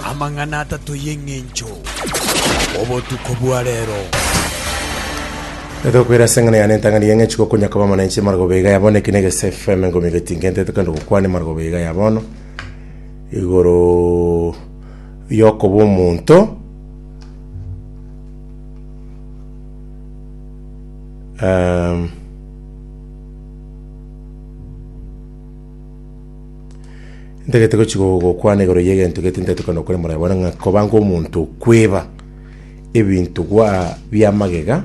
Amang'ana atato y'eng'encho, obotuko bwa reero. Netokwera ase eng'ana yane entang'ani y'eng'encho igo konya koba mona inche emargoba iga ya bono, eke na egesefu, emengo emebe tingentete kende gokwana emargoba iga ya bono, igoro yokoba omonto, ehm. Ntagete gochia gokwana igoro y'egento gete ntetukana okore moraye bore ng'a koba ng'a omonto okweba ebinto gwa bia magega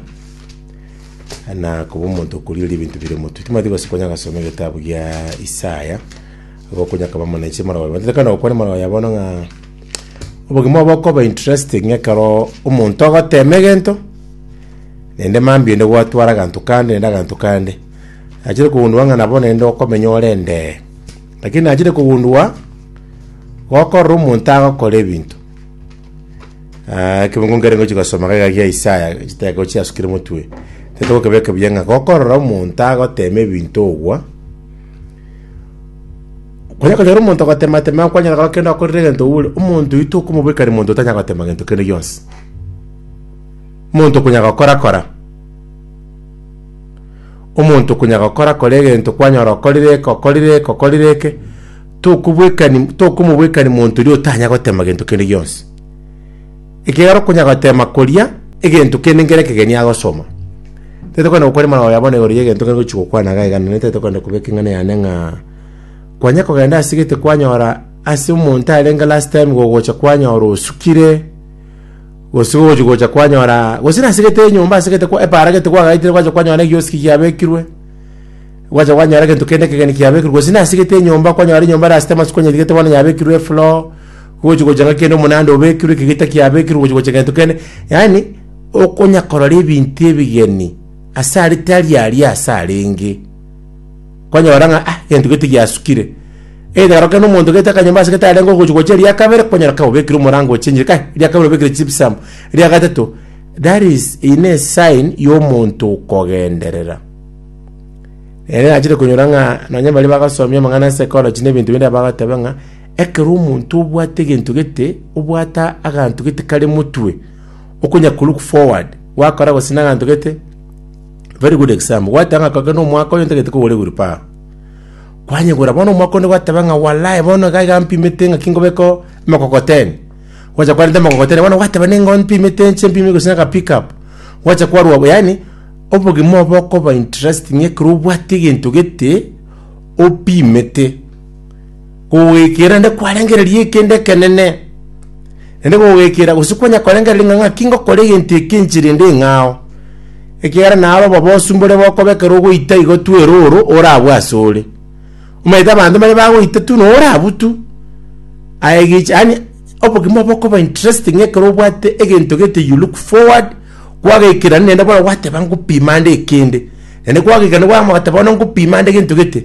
na koba omonto okorigereria ebinto bire motwe. Timanyeti gose konya gasoma egetabu gia Isaya, igo okonya koba muna inche moraye bore. Ntetukana gokwana moraye oye bono ng'a obogima obo okoba interesting ekero omonto ogotema egento, naende mambia inde gwatwara aganto kande naende aganto kande. Nachire kogundua ng'a nabo nende okomenya ore endee. Lakini nachire kogundua gokorora omonto agokora ebinto. Ah, ekebungo nkere ngochi gosoma gaiga gia Isaya, chiteko chiasukire motwe. Tete gokebeka buya ng'a gokorora omonto agotema ebinto ogwa, kwanya konyora omonto ogotematema kwanyora kora kende okorire egento oure omonto oito okomobeka ere monto otanya gotema gento kende gionsi monto okonya gokora kora Omonto konya gokora kore egento kwanyora okorire eke, okorire eke, okorire eke, tokobwekani- tokomobwekani monto oria otanya gotema gento kende gionsi. Ekiagera okonya gotema koria egento kende nkere ekegeni agosoma. Tari kogenda gokora emaroro ya bono igoro ya egento kere gochi gokwana iga iga, naende tari kogenda kobeka eng'ana yane ng'a kwanya kogenda ase gete kwanyora ase omonto arenge last time gogocha kwanyora osukire, Gose gogochi gocha kwanyora gose nasegete enyomba asegete kwa epaara gete kwagaetire gwacha kwanyora egioski giabekirwe, gwacha kwanyora egento kende ekegeni kiabekirwe gose nasegete enyomba kwanyora enyomba erasete amasuko onyetigete bono yabekirwe efloor, gogochi gocha ng'a kende omonanda obekirwe eke gita kiabekirwe gochi gocha gento kende, yaani okonyakorora ebinto ebigeni ase are tari aria ase arenge. konyora ng'a ah, egento gete giasukire. Either oroke na omonto gete akanyomba ase gete arenge ogochi gochia eria kabere, okonyora kai obekire omorango ochenchire kai, eria kabere obekire gypsum, eria gatato. That is eye ne sign ya omonto okogenderera. Ere nachire konyora ng'a nonye baria bagasomia amang'ana ase ecology na ebinto binde bagateba ng'a ekero omonto obwate egento gete obwata aganto gete kare motwe okonya kolook forward gwakora gose na aganto gete Very good example, gwateba ng'a kogenda omwaka oyo ntagete kogora ewilbaro. Kwanyegora bono omwaka onde gwateba ng'a walai bono iga iga mpimete ng'aki nkobekao emokokoteni. Gwacha kwarenta emokokoteni bono gwateba nigo mpimete nche mpime gose aka pick up. Gwacha kwarwa bo yaani obogima obo okoba interesting ekero obwate egento gete opimete. Kogogekiera naende kwarengereria ekende ekenene, naende kogogekiera gose kwanya korengereria ng'a ng'aki ngokora egento eke inche rende eng'ao, ekiagera naro obobosu mbore bokoba ekero ogoita igo tu erooro orabwo ase ore. Omanyete abanto mbare bagoita tu na orabwo tu, aye egecha yaani obogima bokoba interesting ekero obwate egento gete you look forward, kwagekiera naende bono gwateba ngopima nde ekende, naende kwagekiera nabwo ogamanya ogoteba bono ngopima nde egento gete.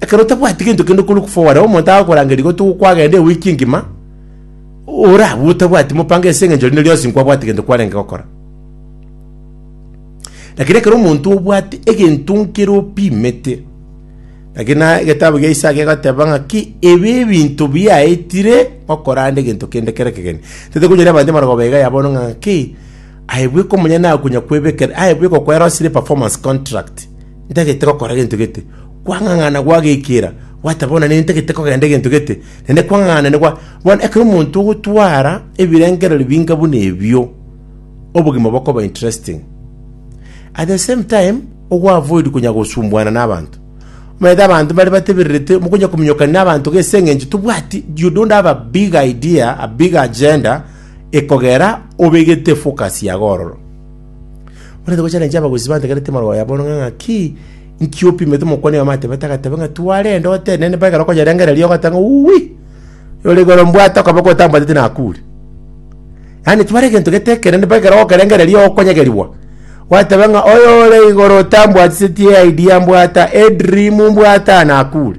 Ekero otabwati gento kende korwa kofoware, omonto agakorangeria gotuga kwagenda ewiki engima, orabue otabwati mopango ase eng'encho rinde rionsi nkwabwati gento kwarenge gokora. Lakini ekero omonto obwate egento nkere opimete, lakini na egetabu gia Isaya kegoteba ng'aki ebi ebinto biaetire gokora ande egento kende kere kegeni. Tete konyoria abanto emerogo ba iga ya bono ng'a ng'aki aye bweka omonyene akonya kwebekera aye bweka okoerosire performance contract Ntagete gokora gento gete, kwang'ang'ana gwagekiera, gwateba buna nere ntagete kogenda egento gete, naende kwang'ang'ana nere gwa... Bono ekero omonto ogotwara ebirengererio binga buna ebio, obogima bokoba interesting. At the same time, ogoavoid konya gosumbuana na abanto. Omanyete abanto mbare batebererete, mokonya kominyokania na abanto gese eng'encho tobwati, you don't have a big idea, a big agenda, ekogera obegete focus yago ororo. Barente gochaneneria abagusii bantegereti amaroro aya bono ng'a ng'aki inki opimete? Omokwania oyomo atebete, agateba ng'a twarende otenene mpaka ekero okonyerengereria ogoteba ng'a uwi, oyore igoro mbwate okoboko otambwateti nakure. Yaani tware egento gete ekenene mpaka ekero ogokerengereria okonyegerigwa, gwateba ng'a oyore igoro otambwatiseti eidea mbwata, edream mbwata nakure.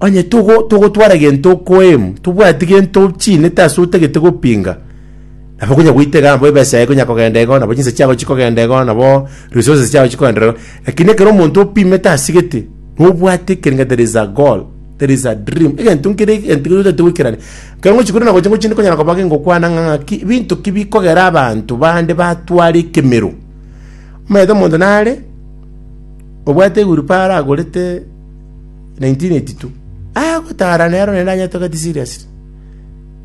Onye togo, togotwara gento okoeemu, tobwati gento ochinete ase otagete gopinga, nabo konya goita igaa, nabo ebesa yaye ekonya kogenda igo, nabo chinsa chiago chikogenda igo, nabo resources chiago chikogenda igo. Lakini ekero omonto opimete asigete, nobwate ekerenga there is a goal, there is a dream, egento nkere egento keria otagete goikerania. Ekero ngochi korwa na gocha ngochi ndikonyara koba kengokwana ng'a ng'aki, binto ki bikogera abanto bande batware ekemero. Omanyete omonto nare, obwate ewilbarrow agorete. 1982, agotara nero naende anyetogete seriously.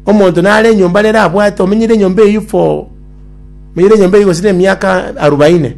Omonto nare enyomba nere abwate omenyeire enyomba eyio for, omenyeire enyomba eyio gose na emiaka arubaine.